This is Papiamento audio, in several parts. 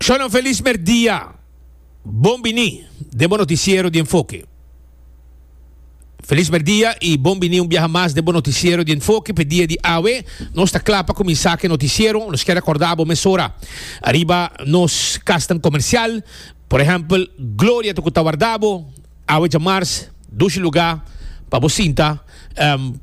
Shona felis merdia. Bon bini den bo noticiero di Enfoke. Felis merdia y bon bini un biaha mas den bo noticiero di Enfoke. P'e dia di awe nos ta kla pa kuminsá ku e noticiero. Nos kier akorda bo mesora ariba nos kasnan komersial. Por ehèmpel Gloria ta ku ta warda bo. Awe djamars dushi lugá pa bo sinta,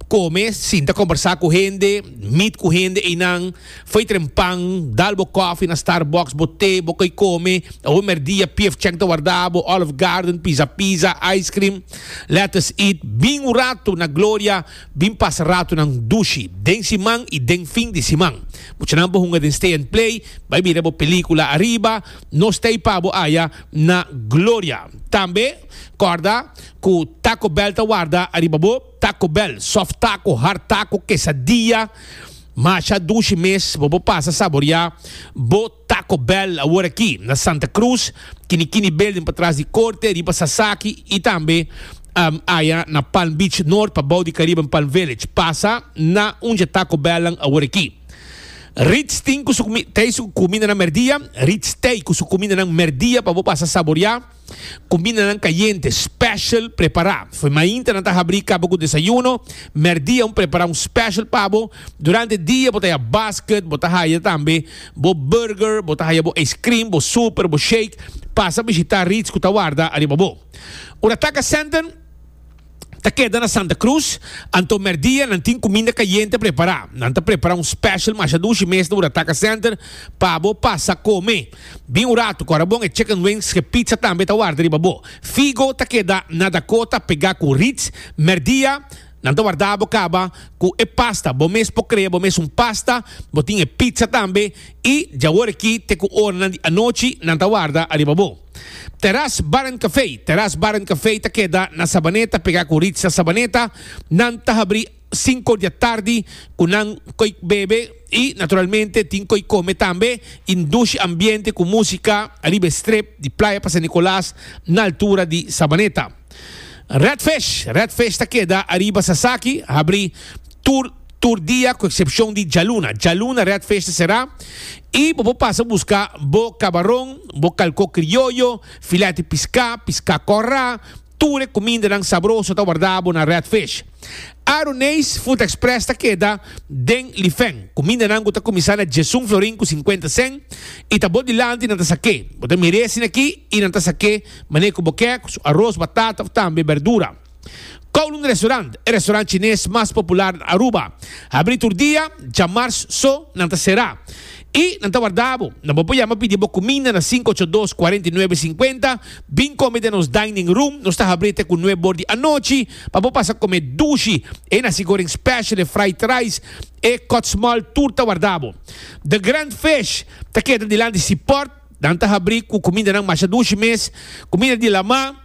kome, sinta kombersá ku hende, mit ku hende einan, fei tren pan, dal bo kòfi na Starbucks, bo te, bo kei kome, awe merdia PF Chang ta warda bo, Olive Garden, Pizza Pizza, ice cream, let us eat, bin un ratu na Gloria bin pasa ratunan dushi den siman i den fin di siman. Muchanan bo hunga den Stay and Play, bai bira bo pelíkula ariba. Nos ta i pa bo aya na gloria. Tambe corda cu Taco Bell ta warda ariba bo, Taco Bell, soft taco, hard taco, quesadilla, masha dushi mes, bo por pasa saboria bo Taco Bell awor aki na Santa Cruz, Kini Kini Building patras di Corte, riba Sasaki y tambe aya na Palm Beach North pabao di Caribbean Palm Village. Pasa na un dje Taco Bell-nan awor aki. Rits tin ku su tei su kumindanan merdia. Rits tei ku su kumindanan merdia pa bo pasa saboriá. Kumindanan kayente, special, prepará. Fo'i mainta nan ta habrí kaba ku desayuno. Merdia un prepará un special pa bo. Durante dia bo ta haya basket, bo ta haya tambe bo burger, bo ta haya bo ijskrim, bo super, bo shake. Pasa bishitá Rits ku ta warda ariba bo. Ora taka sènten. ta keda na Santa Cruz, anto mèrdia nan tin kuminda kayente prepará. Nan ta prepará un special masha dushi mes na Urataca Center pa bo pasa kome. Bin un ratu ku ora bon e chicken wings ku e pizza tambe ta warda riba bo. Figo ta keda na Dakota pegá ku Ritz. Mèrdia nan ta warda bo kaba ku e pasta. Bo mes por krea bo mes un pasta, bo tin e pizza tambe i dja awor aki te ku oranan di anochi nan ta warda ariba bo. Teras Bar and Café, Teras Bar and Café ta keda na Sabaneta pegá ku Ritza Sabaneta. Nan ta habrí sinku di atardi ku nan koe bebe i naturalmente tin koe kome tambe i un dushi ambiente ku músika ariba e strip di Playa pa San Nicolas na altura di Sabaneta. Redfish, Redfish ta keda ariba Sasaki, habri tur tur dia ku eksepshon di djaluna. Djaluna Redfish ta será i bo por pasa buska bo kabaron, bo kalkó krioyo, filèt piská, piská kòrá, tur e kumindanan sabroso ta wardá bo na Redfish. Aroneis Food Express ta keda den Lifeng. Kumindanan ku ta kuminsá na djesun florin ku sinkuenta sèn i ta bou dilanti nan ta sak'é. Bo ta mir'é asina akí i nan ta sak'é. Mane ku bo ke ku su aros, batata òf tambe berdura. Kowloon Restaurant, e restaurant chines mas popular na Aruba, habrí tur dia, dja mars so nan ta será. I nan ta warda bo, nan bo por yama pidi bo kuminda na sinku ocho dos, kuarenta i nuebe, sinkuenta. Bin kome den nos dining room, nos ta habrí te ku nue bor di anochi pa bo pasa kome dushi, e nasi goreng special, e fried rice, e kotsmal tur ta warda bo. The Grand Fish ta keda dilanti Seaport. Nan ta habrí ku kumindanan masha dushi mes, kuminda di lamá,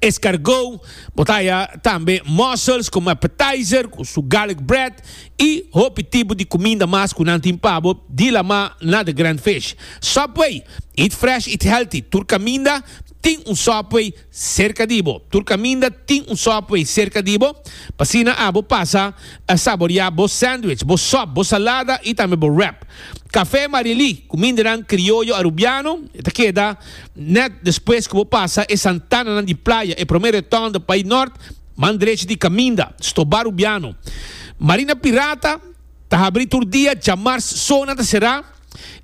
eskargou, bo ta haya tambe mussels komo appetizer ku su garlic bread i hopi tipo di kuminda mas ku nan tin pa bo di lamá na The Grand Fish. Subway, Eat fresh, eat healthy, tur kaminda tin un Subway Serka di bo. Tur kaminda tin un Subway serka di bo, pa asina abo pasa a saboriá bo sandwich, bo sòp, bo salada i tambe bo wrap. Kafé Marielí, ku mindenan krioyo Arubiano, e ta keda nèt despues ku bo pasa e santananan di playa, e promé retonda bai nòrt, man drechi di kaminda, stobá Arubiano. Marina Pirata ta habrí tur dia, djamars so nan ta será.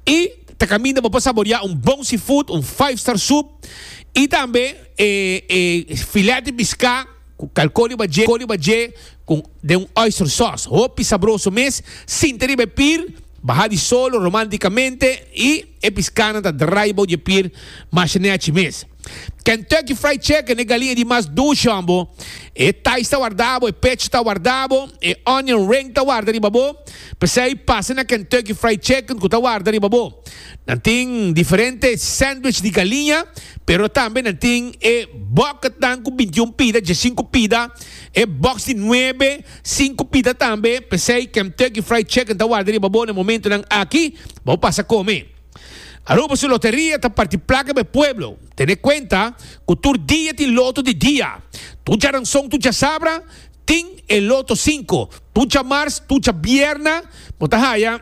Y ta caminda bo pa saborea un bon seafood, un five star soup y tambe e e filet di pisca cu calcoli badje coli badje cu den un oyster sauce hopi sabroso mes. Sinta riba e pir, baha di solo romanticamente y e piscanan ta draai bou dje pir masha nechi mes. Kentucky Fried Chicken, e galinha di mas dushon bo, e thighs ta warda bo, e pecho ta warda bo, e onion ring ta warda riba bo. P'esei pasa na Kentucky Fried Chicken ku ta warda riba bo. Nan tin diferente sandwich di galinha, pero tambe nan tin e bucketnan ku bintiun pida, diesinku pida, e box di nuebe, sinku pida tambe. P'esei Kentucky Fried Chicken ta warda riba bo na e momentunan aki, bo pasa kome. Aruba su loteria ta parti plaka pa e pueblo. Tene kuenta ku tur dia tin loto di dia. Tur djaranson, tur djasabra tin e loto sinku. Tur djamars, tur djabierna bo ta haya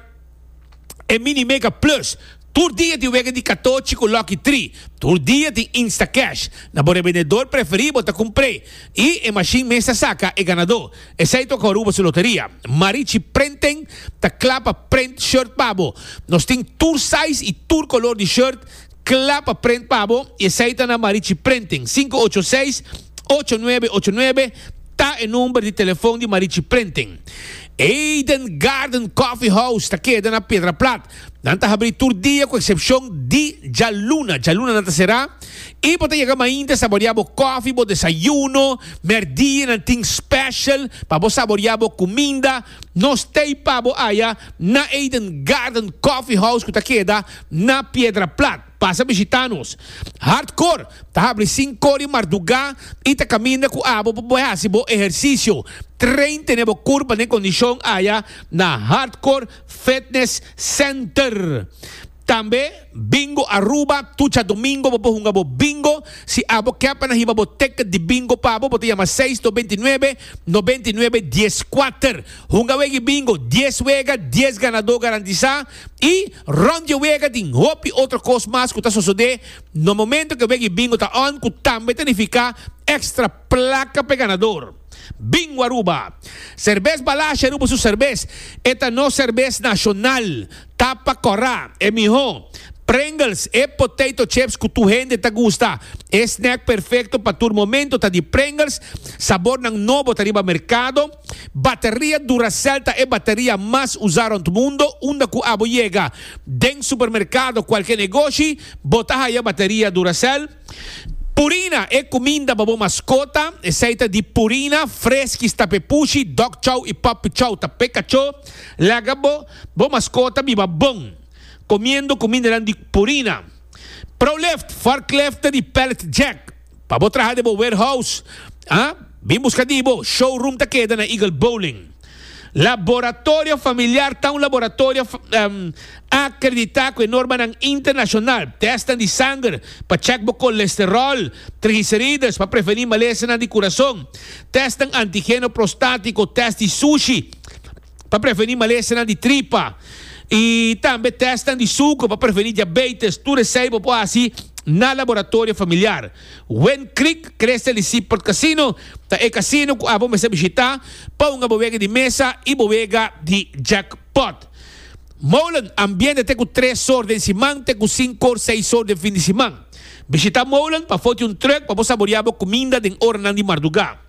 e Mini Mega Plus. Tur dia tin wega di katochi ku Lucky Tri. Tur dia tin Instacash. Na bo rebendedor preferí bo ta kumpr'é i e mashin mes ta saka e ganadó. Esei toca Aruba su loteria. Marichi Printing ta cla pa print shirt pa bo. Nos tin tur size y tur color di shirt cla pa print pa bo y esei ta na Marichi Printing. Sinku ocho seis, ocho nuebe ocho nuebe ta e number di telefon di Marichi Printing. Eden Garden Coffee House ta keda na Piedraplat. Nan ta habrí tur dia ku eksepshon di djaluna. Djaluna nan ta será i bo ta yega mainta saboriá bo kòfi, bo desayuno. Mèrdía nan tin special pa bo saboriá bo kuminda. Nos tei pa bo aya na Eden Garden Coffee House ku ta keda na Piedra Plat. Pasa bishitá nos. Hardkor ta habrí sinku di mardugá i ta kaminda ku abo pa bo hasi bo ehersisio. Train tene bo kurpa den kondishon aya na Hardkor. Fitness Center. Tambe Bingo Aruba, Tucha Domingo bo por hunga bo Bingo. Si abo ke pa nan hiba bo ticket di Bingo pa bo, bo ta yama seis dos binti nuebe, nobenta i nuebe, dies kuater. Hunga wegi Bingo, dies wega, dies ganadó garantisá i rònt dje wega tin hopi otro kos mas ku ta sosodé na momentu ke wegi Bingo ta on ku tambe ta nifiká extra Placa p'e ganador. Bingo Aruba. Serbes Balashi Aruba su serbes. E ta nos serbes nacional. Tapa cora. E miho. Pringles, e potato chips cu tur hende ta gusta. E snack perfecto pa tur momento ta di Pringles. Sabornan nobo ta riba mercado. Bateria Duracell ta e bateria mas uza rond mundo. Unda cu abo yega den supermercado, cualkier negoshi, bo ta haya bateria Duracell. Purina, e cuminda pa bo mascota, esey ta di Purina, Fresky, Stapepushi, Dog Chow y Puppy Chow, ta pe cacho. Laga bo bo mascota biba bon comiendo cumindanan di Purina. Prolift, Forklift ta di Pallet Jack, pa bo traha den bo warehouse, a bin busca di bo. Showroom ta keda na Eagle Bowling. Laboratorio Familiar ta un laboratorio akreditá ku e normanan internashonal. Tèstnan di sanger pa chèk bo kolesteròl, trigiserides pa prevení malesanan di kurason, tèstnan antigeno prostátiko, tèst di sushi pa prevení malesanan di tripa i tambe tèstnan di suker pa prevení diabeites. Tur esei bo por hasi na Laboratorio Familiar. Wend Creek Crystal di Seaport Casino ta e casino cu abo mester bishita pa un abowega di mesa y bowega di jackpot. Molen ambiente ta cu tres sor den siman ta cu sincor seis sor den fin di siman. Bishita Molen pa foti un truck pa bo saborea bo cuminda den oranan di marduga.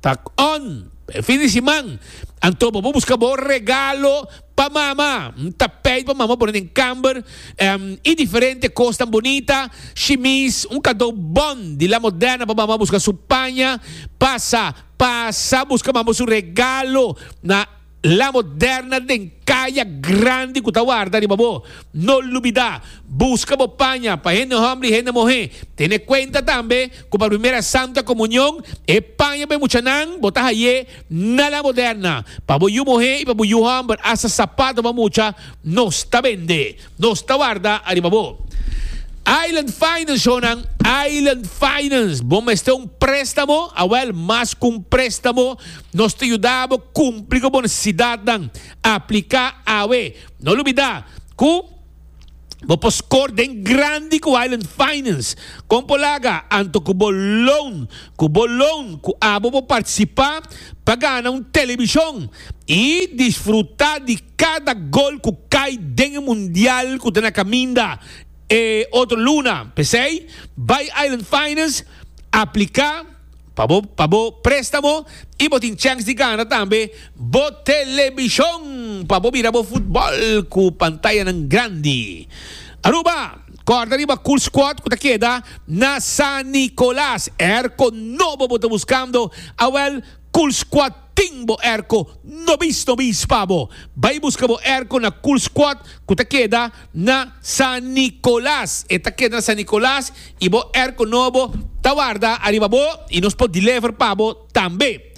Tak on, e fin di siman, anto bo por buska bo regalo pa mama. N ta peit pa mama pone den kamber em i diferente kosnan bunita, shimis, un kadou bon di La Moderna pa mama buska su paña. Pasa, pasa buska mama su regalo na La moderna den kaya grandi ku ta warda riba bo. No lubidá, buska bo paña pa hende hòmber i hende muhé. Tene kuenta tambe ku pa Primera Santa Komunion e paña pa e muchanan bo ta haye na la moderna. Pa bo yu muhé i pa bo yu hòmber asta sapato bo a mucha nos ta bende. Nos ta warda ariba bo. Island Finance Honan, Island Finance, bo mester un préstamo? Awel, mas ku un préstamo, nos ta yuda bo kumpli ku bo nesesidatnan. Apliká awe. No lubidá ku bo por skor den grandi ku Island Finance. Kon por laga? Anto ku bo loan. Ku bo loan ku abo por partisipá pa gana un telebishon i disfrutá di Cada gol cu cay den e mundial cu ta na caminda e otro luna. P'esey, bay Island Finance aplica pa bo pa bo prestamo y bo tin chens di gana tambe bo telebision pa bo mira bo futbol cu pantayanan grandi. Aruba, Corda riba Cool Squad cu ta keda na San Nicolas. Erco nobo bo ta buscando? Awel, Cool Squad. Tin bo erko nobis nobis pa bo. Bai buska bo erko na Cool Squad ku ta keda na San Nicolas. E ta keda na San Nicolas i bo erko nobo ta warda ariba bo i nos por deliver pa bo tambe.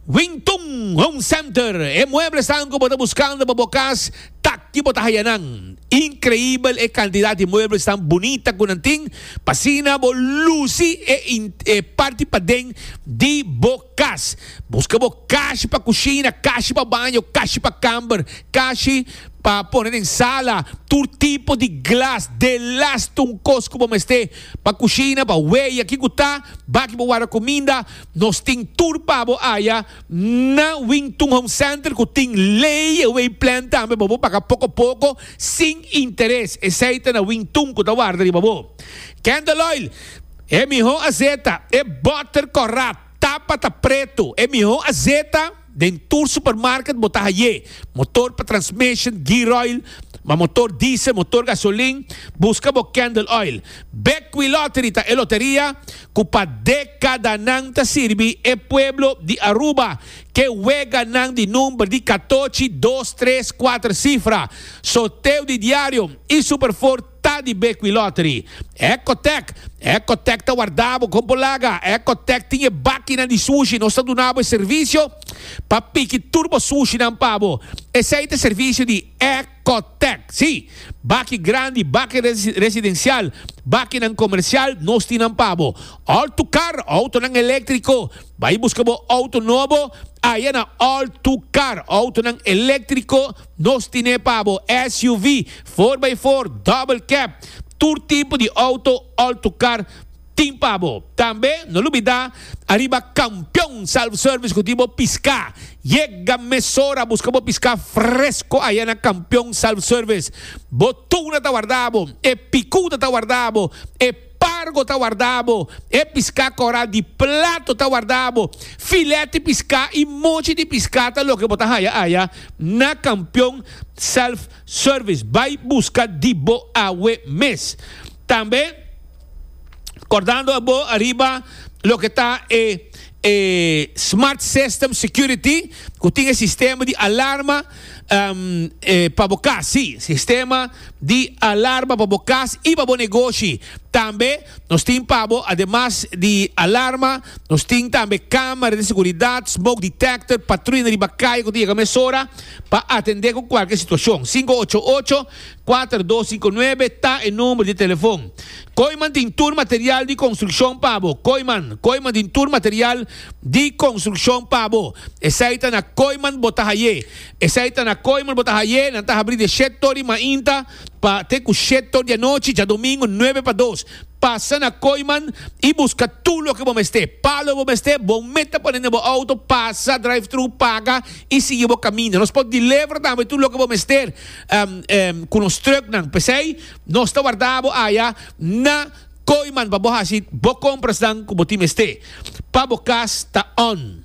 Wing Tun Home Center, e mueblesnan ku bo ta buskando pa bo kas ta aki bo ta haya nan. Inkreibel e kantidat di muebles tan bunita ku nan tin, pa asina bo lusi e parti paden di bo. Kas, Buska bo kashi pa kushina, kashi pa baño, kashi pa kamber, kashi pa pone den sala, tur tipo di glas, delast un kos ku bo mester pa kushina, pa weya kico ta, baki bo warda kuminda, nos tin tur pa bo aya na Wington Home Center ku tin layaway plan tambe pa bo paga poko poko sin interes, esei ta na Wington ku ta warda riba bo. Candle Oil. E miho azeta, e botter corrap, tapa ta preto, e miho azeta den tur supermarket bo ta haye, motor pa transmission, gearoil, ma motor diesel, motor gasolin, busca bo candle oil. Bekwilottery ta e loteria cu pa decadanan ta sirbi e pueblo di Aruba ke weganan di number di catochi, dos, tres, cuater cifra. Sorteo di diario y superfor. Ta di Bequi Lottery. Ecotec, Ecotec ta warda bo con bo laga. Ecotec tin e bakinan di sushi. Nos ta duna bo e servicio pa piki tur bo sushinan pa bo. Esey ta e servicio di Ecotec. Sí, baki grandi, baki residencial, bakinan comercial, nos tin nan pa bo. All to Car, autonan electrico. Bay busca bo auto nobo aya na All to Car, autonan electrico. Nos tin'é pa bo, SUV, four by four, double cab, tur tipo di auto, alto car, tin pa bo. Tambe, no lubida, ariba Campeon Self Service cu tin bo pisca. Yega mesora busca bo pisca fresco aya na Campeon Self Service. Bo tuna ta warda bo, e picuda ta warda bo, e. Pargo ta warda bo, e piská koral di plato ta warda bo, filèt di piská i mochi di piská ta loke bo ta haya aya na Kampion Self Service. Bai buska di bo awe mes. Tambe kordando a bo ariba loke ta e e Smart System Security ku tin e sistema di alarma. pa bo cas, sí, sistema di alarma pa bo cas y pa bo negoshi. Tambe nos tin pa bo, ademas di alarma, nos tin tambe camera di seguridad, smoke detector, patruya na riba caye cu ta yega mesora pa atende cu cualkier situacion. Cinco ocho ocho. Kuater dos sinku nuebe ta e number di telefon. Koiman tin tur material di konstrukshon pa bo. Koiman, Koiman tin tur material di konstrukshon pa bo. Esei ta na Koiman bo ta haye. Esei ta na Koiman bo ta haye. Nan ta habri di shet tor di mainta pa te ku shet tor di anochi djadomingu nuebe pa dos. Pasa na Koiman i buska tur loke bo mester. Pa lo bo mester, bo meta pone na bo outo, pasa drive-thru, paga i sigui bo kaminda. Nos por deliver tambe tur loke bo mester. um, um, ku nos truknan. P'esei, nos ta warda bo aya na Koiman pa bo hasi bo komprasnan ku bo tin mester pa bo kas ta on.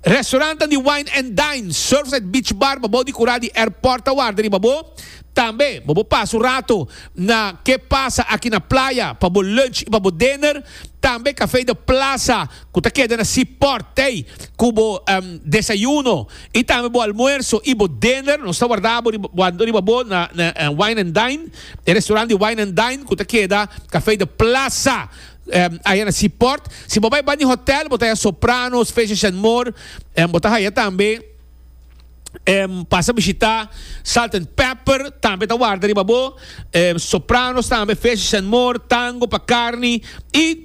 Restaurantan di Wine and Dine, Surfside Beach Bar pa bou di Kurá di Airport ta warda riba bo. Tambe, bo bo pasa un rato na Ke Pasa Aki na Playa pa bo lunch i pa bo dinner. Tambe Café de Plaza ku ta keda na Seaport tei ku bo um, desayuno Y tambe bo almuerso y bo dinner, nos ta warda bo riba bo na Wine and Dine, e restaurant di Wine and Dine cu ta keda Café de Plaza aya na Seaport. Si bo bay bandi hotel bo ta haya Sopranos, Fishes and More, bo ta haya tambe pasa bishita Salt and Pepper, tambe ta warda riba bo Sopranos tambe, Fishes and More, Tango pa carni y.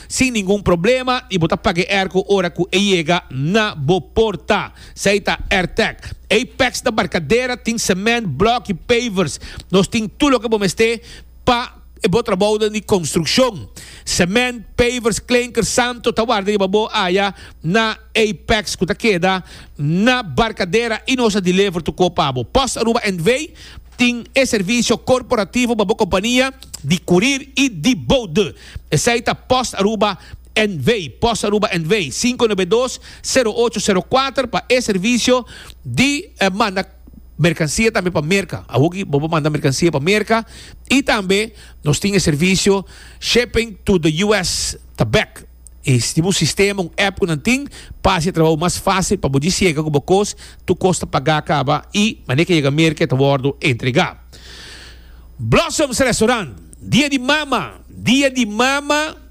sin ningun problema y bo ta paga e airco ora cu e yega na bo porta. Esey ta Airtec. Apex ta barcadera, tin cement, block y pavers. Nos tin tur loke bo mester pa e bo trabaoden di construccion. Cement, pavers, klinker, santo ta warda riba bo aya na Apex cu ta keda na Barcadera y nos a deliver tu co pa bo. Post Aruba NV. tin e servicio corporativo pa bo compania di curir y di boude. Esei ta Post Aruba NV, Post Aruba NV, sinku nebe dos, sero ocho, sero kuater pa e servisio di manda merkansia tambe pa Merka. Awor ki bo por manda merkansia pa Merka i tambe nos tin e servisio Shipping to the US ta bek. I si tin un sistema, un app ku nan tin pa hasi e trabou mas fásil pa bo djis yega ku bo kos, tur kos ta pagá kaba i manera ke yega Merka e ta wòrdu entregá. Blossoms Restaurant, Dia di Mama, Dia di Mama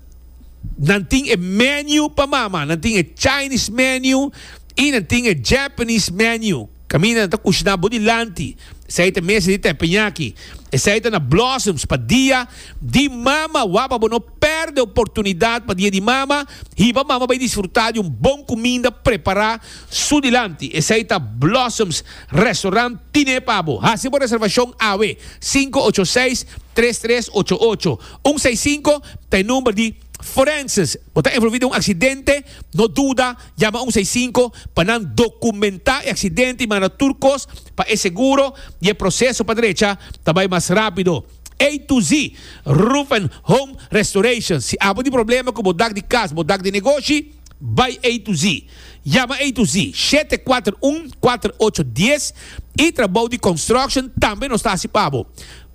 nan tin e menu pa mama, nan tin e Chinese menu y nan tin e Japanese menu. Caminda nan ta cushina bo dilanti, esey ta mesa di tepeñaki, esey ta na Blossoms pa Dia di Mama. Wak pa bo no perde e oportunidad pa Dia di Mama, hiba mama bay disfruta di un bon cuminda prepara su dilanti, esey ta Blossoms. Restaurant Tine pa bo. Hasi bo reservashon awe. Sinku ocho seis, tres tres ocho ocho. Un seis sinku ta e number di Forenses. Bo ta envolvi den un aksidente? No duda, yama un seis sinku pa nan dokumentá e aksidente i manda tur kos pa e seguro i e proseso pa drecha ta bai mas rápido. A to Z Roof and Home Restoration. Si abo tin problema ku bo dak di kas, bo dak di negoshi. Bai ei tu zi. Yama ei tu zi, shete kuater un, kuater ocho dies, i trabou di konstruksjon tambe nos ta hasi pa bo.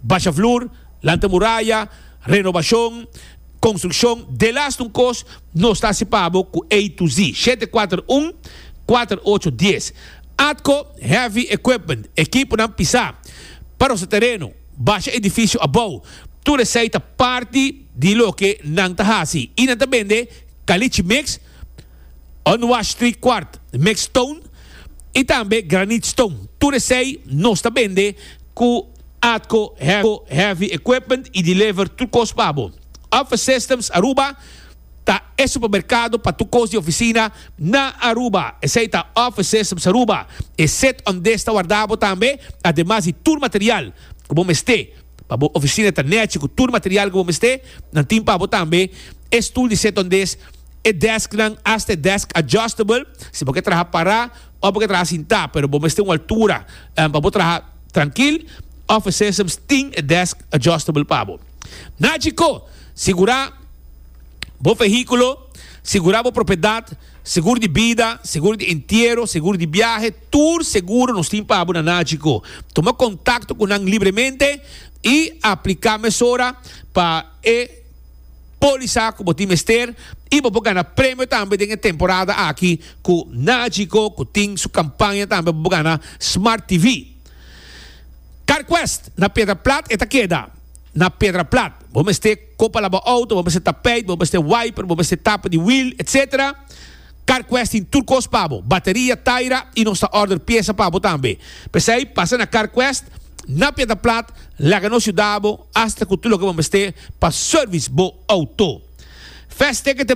Basha flur, lanta muraya, renobashon, konstrukshon, delas un kos, nos ta hasi pa bo ku ei tu zi, shete kuater un, kuater ocho dies. Atco Heavy Equipment, ekiponan pisá, pa rosa tereno, basha edifisio abou, tur esei ta parti di loke nan ta hasi i nan ta bende. Caliche Mix, Unwashed Tri Kwart Mixed Stone y tambe Granite Stone. Tur esey nos ta bende cu Atco Heavy Equipment y deliver tur cos pa bo. Office Systems Aruba ta e supermercado pa tur cos di oficina na Aruba. Esey ta Office Systems Aruba, e set undesta warda bo tambe ademas di tur material cu bo mester. Pa bo oficina ta nechi cu tur material cu bo mester, nan tin pa bo tambe e stoel di seta ondes, e desknan, hasta e desk adjustable, si bo ke traha para of bo ke traha sinta, pero bo mester un altura pa bo traha trankil, Office Systems tin e desk adjustable pa bo. Na Chicó, sigura bo vehiculo, sigura bo propiedad. Seguro di bida, seguro di entiero, seguro di biahe, tur seguro nos tin pa abo na Nagico. Tuma contacto cu nan libremente y aplica mesora pa e polisa cu bo tin mester y bo por gana premio tambe den e temporada aki cu Nagico cu tin su campaña tambe bo por gana Smart TV. CarQuest na Piedra Plat e ta keda na Piedra Plat. Bo mester. Con palabra auto bo mester ta peit, bo mester wiper, bo mester tapa di wheel, etc. Carquest tin tur cos pa bo, bateria, taira y nos ta order pieza pa bo tambe. P'esey pasa na Carquest na Piedra Plat, laga nos yuda bo hasta cu tur loke bo mester pa service bo auto. Fast Ticket.